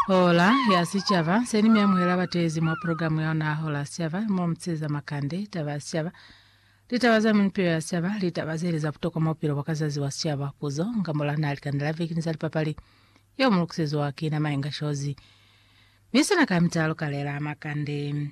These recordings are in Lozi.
Hola ya Sicaba, Seni mi amuhela batezi mwa programu ya ona Hola ya Sicaba, mo mu tseza makande, taba ya sicaba, litaba za minupilo ya sicaba, litaba zeli za butokwa mwa bupilo bwa ka zazi bwa sicaba, puzo, nga mola na likanda la viki ni za lipapali, yeo mu lukiseziwa ki na Mainga Shozi. Mi sina ka mitalo kalela makande.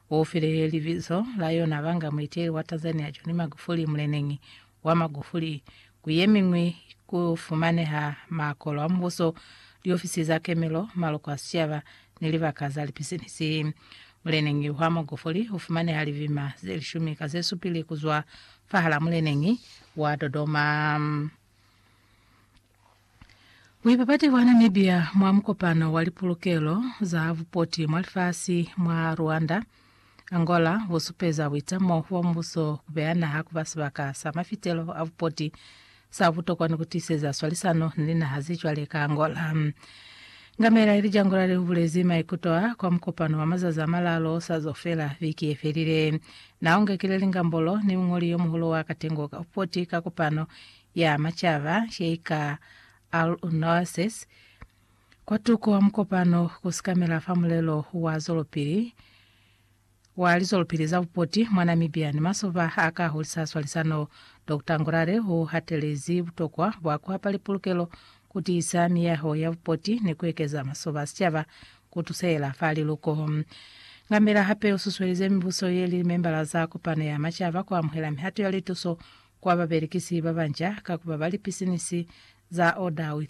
U file libizo la yona banga muiteli wa Tanzania John Magufuli muleneñi wa Magufuli. Ku ye miñwi ku fumaneha makolo a mubuso, liofisi za kemelo, maloko a sicaba, ni libaka za lipisinisi. Muleneñi wa Magufuli u fumaneha libima ze lishumi ka ze supili ku zwa fahal'a muleneñi wa Dodoma. Buipapati bwa Namibia mwa mukopano wa lipulukelo za bupoti mwa lifasi mwa Rwanda, Angola busupeza buitamo bwa mubuso kubeya naha kuba sibaka sa mafitelo a bupoti sa butokwa ni kutiseza swalisano ni linaha zecwale ka Angola. Ngamela ili Jangolale ubulezi maikuto a kwa mukopano wa mazazi amalalo osazo fela viki yefelile. Naungekile lingambolo ni muñoli yomuhulu wa katengo ka bupoti ka kopano ya Macaba ye i ka Al-Unnawasis, kwatuko wa mukopano ku sikamela fa mulelo wa zwelopili wa lizwelopili za bupoti mwa Namibia ni masoba a ka hulisa swalisano, Doctor Ngurare u hatelezi butokwa bwa ku hapa lipulukelo, ku tiisa miyaho ya bupoti ni ku ekeza masoba a sicaba ku tusehela fa liluko. Ngambela hape u susuelize mibuso ye li limembala za Kopano ya Macaba ku amuhela mihato ya lituso kwa babelekisi babanca ka kuba ba lipisinisi za Order with